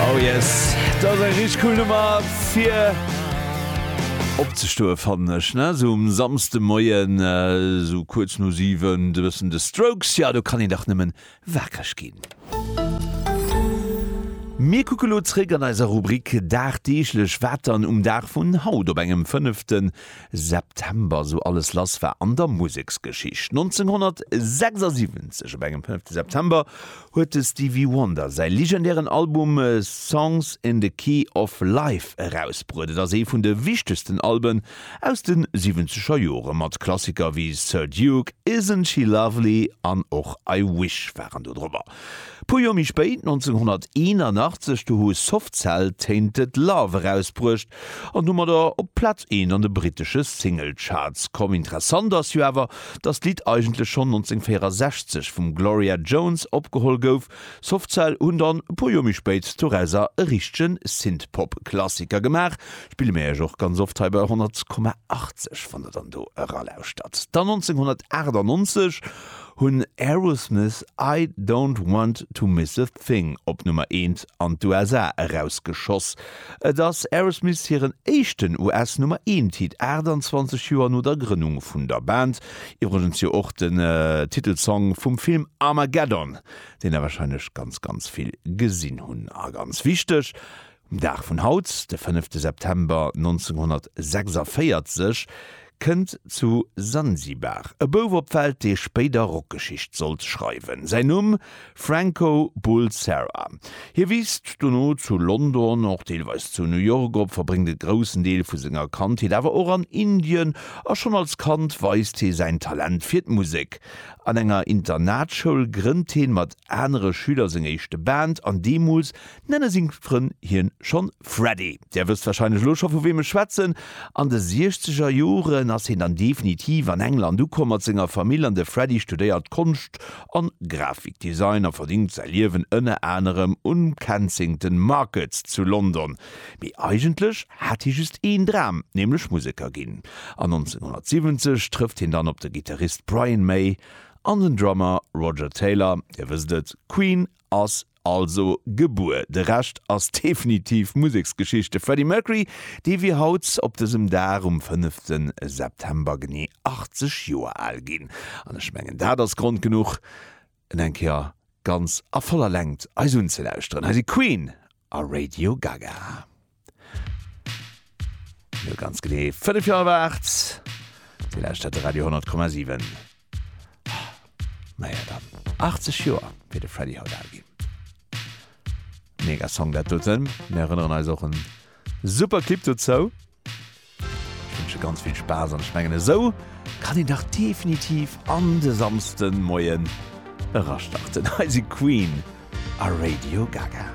Oh yes, dat ass eng richteg cool Nummer fir opzestoe fannen ech, ne, sou um Samsdemoien sou kuerz no 7, e bëssen The Strokes, jo do kann een dach nëmmen waakreg ginn. Mir kucke lo zréck an eiser Rubrik Dagdeeglech, wat dann um Dag vun haut, op engem 5. September sou alles lass war an der Museksgeschicht. 1976, op engem 5. September, huet de Stevie Wonder säi legendären Album Songs in the Key of Life erausbruet. Et ass ee vun de wichtegsten Alben aus de siwwenzeger Jore mat Klassiker wéi Sir Duke, Isn't She Lovely an och I Wish waren do drop. A puer Joer méi spéit, 1981, do hu Soft Cell Tainted Love erausbruecht, an domadder op d'Plaz eent an de brittesche Singlecharts komm. Interessant ass jo awer, dass d'Lidd eigentlech schonn 1964 vum Gloria Jones opgeholl gouf. Softcell hunn dann e puer Joer méi spéit dorauser e richtegen Synthpop-Klassiker gemaach, spille mir iech och ganz oft hei bei 100,80 wann der dann do eralauschtert. Dann 1998 hunn Aerosmith I Don't Want To Miss A Thing op Nummer eent an d'USA erausgeschoss. Et ass Aerosmith hiren éischten US-Nummer-Eent-Hit, 28 Joer no der Grënnung vun der Band. Iwwregens jo och den Titelsong vum Film Armageddon, deen der warscheinlech ganz ganz vill gesinn hunn. A ganz wichteg, Um Dag vun haut, de fënnefte September 1946, Kënnt zu Sansibar e Bouf op d'Welt, dee spéider Rockgeschicht sollt schreiwen. Säin Numm, Franco Bulsara. Hie wiisst dono zu London, och deelweis zu New York op, verbréngt e groussen Deel vu senger Kandheet awer och an Indien a schonn als Kand weist hie säin Talent fir d'Musek. An enger Internatschoul grënnt heen mat anere Schüler seng éischte Band an deemools nenne seng Frënn hien schonn Freddy. Där wësst warscheinlech elo scho vu weem ech schwätzen. An de siechzeger Joren ass hien dann definitiv an England ukomm mat senger Famill an de Freddy studéiert Konscht an Grafikdesign a verdéngt säi Liewen ënner anerem um Kensington Market zu London. Mee eigentlech hat hie just een Dram, nämlech Museker ginn. An 1970 trëfft hien dann op de Gittarist Brian May an den Drummer Roger Taylor. Dir wësst et, Queen ass. Also gebuer. De Rescht ass definitiv Museksgeschichte. Freddie Mercury, dee wier haut op dësem Dag um fënnefte September genee 80 Joer al ginn. An ech mengen dat ass Grond genuch, en eng Kéier ganz a voller Längt eis unzelauschteren. Hei si Queen a Radio Gaga. ganz genee 5 Jahre wart die letzte der Radio 10,7 naja dann 80 Jahre wie de Freddy haut agin mega Song dat doten mir erinnern eis och en super Clip dozou wünsche ganz viel Spaß an schmengen esou kann ihn dach definitiv an de samsten Moien erastarten heise Queen a Radio Gaga.